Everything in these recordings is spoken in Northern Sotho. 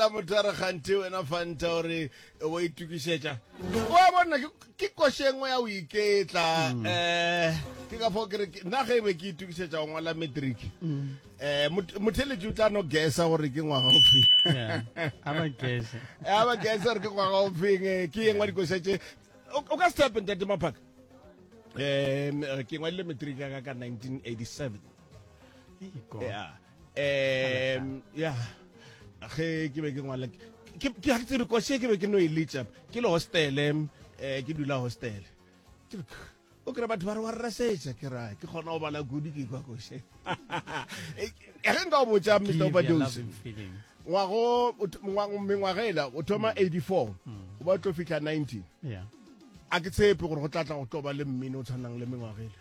Fanta motara kganthe wena Fanta o re wa itukišetša wa bona ke- ke koše engwe ya go iketla um ke ka fao ke re ke- nna ge e be ke itukišetša go ngwala matric um motheletši o tla no gesa gore ke ngwaga o feng Yeah. a ba kese ya ba gesa gore ke ngwaga o feng eh, ke engwe dikoša tše o o ka se tape ntate maphaka um ke ngwadile matric ya ka ka 1987 Iko. yeah um ya ge ke be ke ngwala ke ke ha tsebe kwa se ke be ke no e litsa ke le hostel em eh ke dula hostel Ke re, o kry batho ba re wa rrasetsa ke ra ke kgona go bala kudu ke kwa kose e ge nka o botsa mr obadose ngwago o th- ngwa- mengwaga ela o thoma 84 o ba tlo fitlha 90 Yeah. a ke tshepe gore go tlatla go tlo ba le mmino o tshwanang le mengwaga ela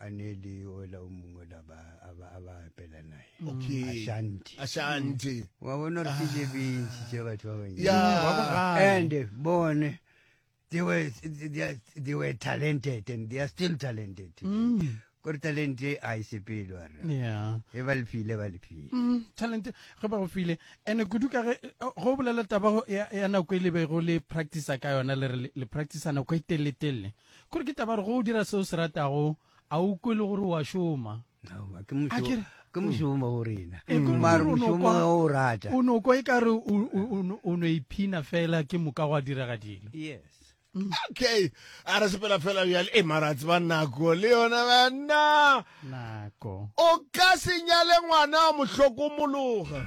a ne e le ola o mongwe la ba a ba a ba apela naye Okay. Ashanti. Ashanti. wa bona gore ke je bentši tša batho ba bantši Ya. Wa bogale. and eh, bone they were, they, are, they were talented and they are still talented Mm. kore talent e a e sepele wa rra Yeah. e ba lefile ba lefile Mm, talent ge ba go file ande kudu ka ge eh, go bolela taba go- ya ya nako e lebego le practice ka yona le re le- le practice nako e telele-telele Kore ke taba re go dira seo se ratago, a o kwe le gore o a šoma. Aowa, ke mošo, Akere- ke mošomo go rena. E kore Mare o no mošomo kwa- ga o rata. O no kwa e ka re o- o- o no- o no iphina fela ke moka gwa direga dilo. Yes. Okay. A re sepela fela bjale. E mara tseba nako le yona banna. Nako. O ka se nyale ngwana wa mohlokomologa.